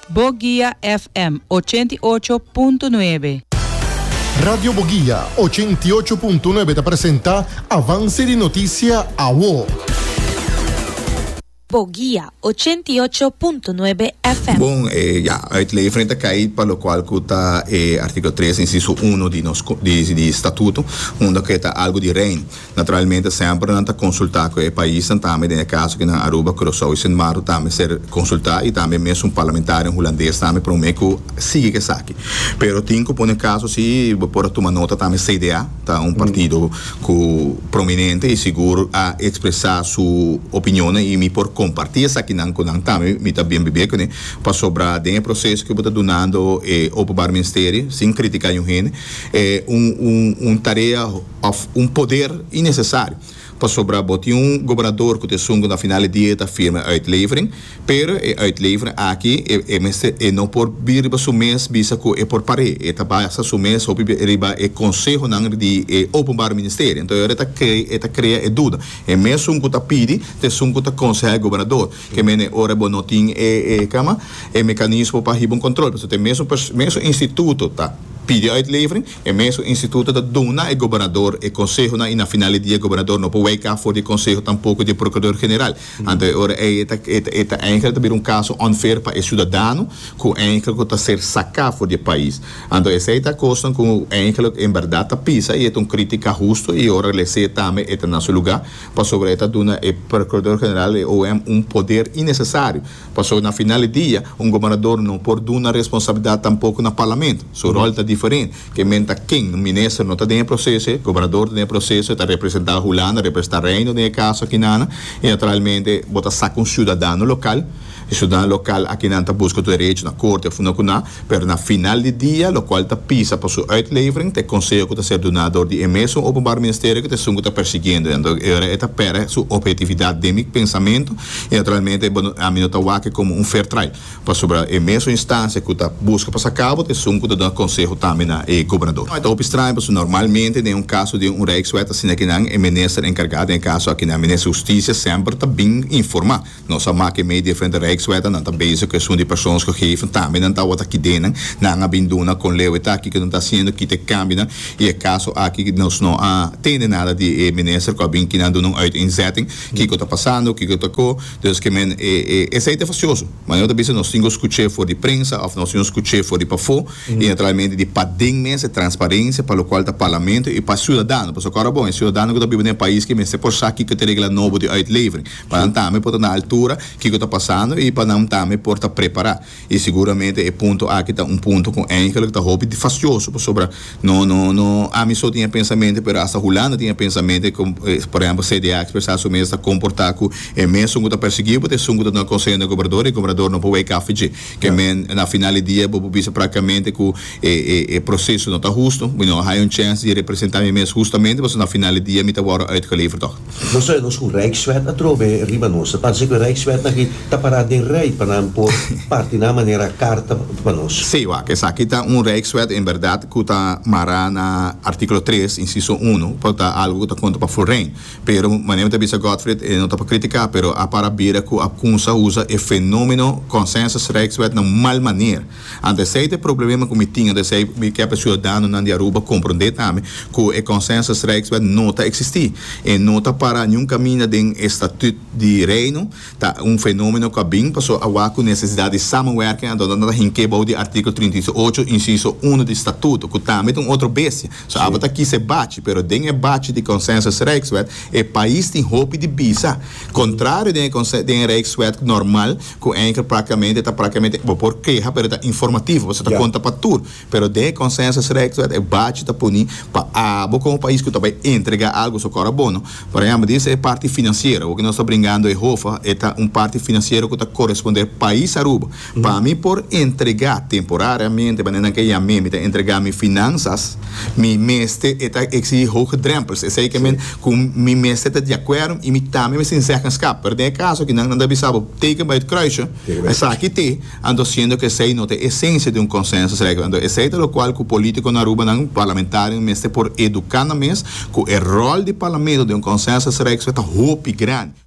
Boguia FM ochenta i ocho punto nuebe. Radio Boguia ochenta i ocho punto nuebe ta presenta Avance di Noticia Awo. Boguia ochenta i ocho punto nuebe FM. Bon, e ya, uit ley frente a kei pa lo cual cu ta e artículo tres, inciso uno di nos, di, di Statuto, unda cu e ta algo di Reino. Naturalmente semper nan ta consulta cu e paisnan tambe, den e caso kinan Aruba, Curacao y Sint Maarten ta mester consulta y tambe mes un parlamentarian Hulandes tambe prome cu sigui cu esaki. Pero tin cu pone caso si bo por a tuma nota tambe CDA ta un partido cu prominente y sigur a expresa su opinionnan y mi por comparti esakinan cu nan tambe mi ta bien bibe cune pasobra den e proceso cu bo ta dunando e Openbaar Ministerie sin critica niun hende e un tarea òf un poder innesesario, pasobra bo tin un gobernador ku ta esun ku na final di dia e ta firma e uitlevering, pero e uitlevering aki e e mester e no por bira riba su mes bisa ku e por par'é, e ta basa su mes hopi bia riba e konsehonan di e Openbare Ministerie. Anto ayora e ta krei e ta krea e duda, e mesun ku ta pidi ta esun ku ta konsehá e gobernador, ke mene e ora bo no tin e e kama, e mekanismo pa hiba un kontrol, pasobra te mesun pers mesun instituto ta pidi uitlevering, E mesun instituto ta duna e gobernador e consehonan y na final di dia e gobernador no por weka for di e conseho tampoco di e procurador general. Anto e ora ey e ta e ta eindelijk ta bira un caso unfair pa e ciudadano cu eindelijk cu ta ser saca for di e pais. Anto esey ta cosnan cu eindelijk en berdad ta pisa y e ta un critica husto y ora lese tambe e ta na su lugar pasobra e ta duna e procurador general y e OM un poder innecesario. Pasobra na final di dia, un gobernador no por duna responsabilidat tampoko na Parlamento. Su rol ta diferent. Ke men ta ken? Un minister no ta den e proseso e. Gobernador ta den e proseso, e ta representa Hulanda, representa Reino den e kaso akinan. I naturalmente bo ta saka un ciudadano local. E ciudadano local akinan ta buska tur derecho na Corte of no ku na. Pero na final di dia, lokual ta pisa pa su uitlevering, ta e konseho ku ta ser duná dor di e mesun Openbaar Ministerio ku ta esun ku ta persigiendo nan. Dor e ora e ta pèrdè su ophetividat den mi pensamentu i naturalmente bo no ami no ta wak komo un fair trial pasobra e mesun instansia ku ta buska pa sa kabo ta esun ku ta duna konseho tambe na e gobernador. Ta hopi straño pasobra normalmente den un kaso di un Rijkswet asina kinan e minister enkargá den e kaso akinan, Minister Hustisia, semper ta bin informá. Nos a maki mei diferente rijkswet en nan ta bezig cu esun di persons cu geven tambe nan tawata kidenan. Nan a bin duna con leu e taki cu nos ta haciendo kita e cambionan y e caso aki nos no a tende nada di e minister cu a bin kinan duna un uiteenzetting kico ta pasando, kico ta cu. Dus ke men e esey ta facioso. Ma nan ta bisa nos tin cu scuche for di prensa of nos tin cu scuche for di pafo y naturalmente di paden mes e transparencia pa locual ta Parlamento y pa ciudadano. Pasobra cu ora bon e ciudadano cu ta biba den e pais ke mester por sa kico ta e regla nobo di uitlevering. pa nan tambe por ta na altura kiko ta pasando i pa nan tambe por ta prepará. I seguramente e punto aki ta un punto ku eindelijk ta hopi fasioso pasobra no no no ami so tin e pensamente pero hasta Hulanda tin e pensamente ku por ehèmpel CDA a ekspresá su mes ta komportá ku e mesun ku ta perseguiu bo ta esun ku ta duna konseo na e gobernador i e gobernador no por wei kaffi dje ke men na final di dia bo por bisa praktikamente ku E proseso no ta hustu. Mi no a haña un chèns di representá mi mes hustamente pasobra na final di dia mi ta wòrdu uitgeleverd tòg. Nos ta oe nos ku Rijkswet a trobe riba nos. Ta parse ku e Rijkswet aki ta pará den rij pa nan por parti nan manera karta pa nos. Sí, wak, esaki ta un Rijkswet en bèrdat ku ta mará na artíkulo tres, insiso uno, pa ta algu ku ta konta pa Fulrain. Pero manera mi ta bisa Godfried, e no ta pa kritiká, pero a para bira ku a kumsa usa e fenómeno Consensus Rijkswet na un mal maner. Ante esei ta e problemenan ku mi tin, ante esei mi ke pa siudadanonan di Aruba komprondé tambe ku e Consensus Rijkswet no ta eksistí. E no ta pará niun kaminda den e Statüt di Reino. Ta un fenómeno ku a bin pasó awa ku nesesidat di samenwerking anto nan ta hink'é bou di artíkulo trinta i ocho, insiso uno di Statuto, ku tambe ta un otro bestia. So aba ta kisa e bachi, pero den e bachi di Consensus Rijkswet e pais tin hopi di bisa, kontrario den e den e Rijkswet normal, Cu Anchor practicamente ta practicamente, bo por keha pero ta informativo, pasobra ta conta pa tur. Pero den e consensus recht wet e bachi ta puni pa abo como pais cu ta bay entrega algo su cor abono. Por ehemplo, di e parti financiero, awo cu nos ta bringando e hofa, e ta un parti financiero cu ta coresponder pais Aruba. Pa mi por entrega temporariamente, manera nan ke yam'e, mi ta entrega mi finanzas. Mi mester, e ta exigi hoge drempels, esei ke men ku mi mester ta di akuerdo i mi tambe mester tin zeggenskap. Pero den e kaso aki nan, nan ta bisa bo, teken bai ut kruisje, esaki te, anto siendo ku esei no ta e esensia di un konsensusregel. Anto esei ta lokual ku polítiko na Arubanan, parlamentarionan mester por eduká nan mes ku e ròl di parlamento den un konsensusregel ta hopi grandi.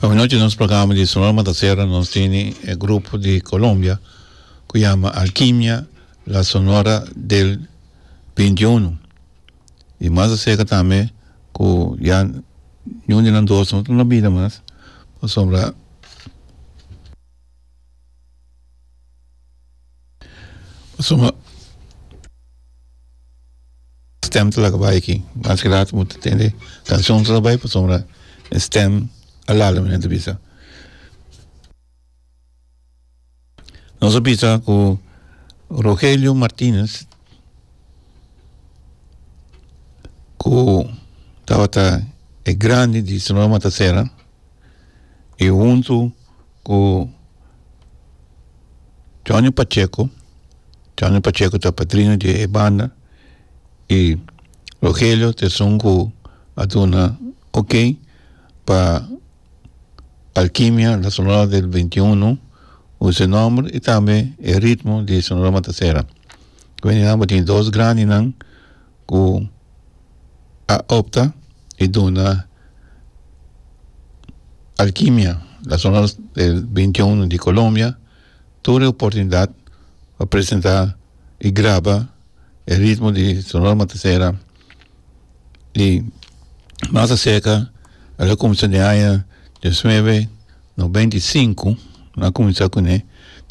Awanochi nos programa di Sonora Mataserra nos tene e grupo di Colombia cu yama Alkimia La Sonora del binti uno y mas acerca tambe cu ya niun di nan dos no ta na bida mas pasobra stem ta laga bai aki mas ki later bo ta tende cansion ta laga bai pasobra e stem a lala mi nen ta bisa nos a bisa ku Rogelio Martinez ku tabata e grandi di sonora matasera y hunto cu Johnny Pacheco, Johnny Pacheco ta padrino di e banda y Rogelio ta esun cu a duna ok pa Alkimia La Sonora del Veinti Uno cu su nomber y tambe e ritmo di Sonora Matasera. Cu e nan tin dos grandenan. ku a opta i duna Alkimia, la zona del beintiuno di Kolombia, tur e oportunidat pa presentá i graba e ritmo di Sonora Matasera i mas aserka al a kuminsá den aña diosnuebe nobenta i sinku nan kuminsá kuné.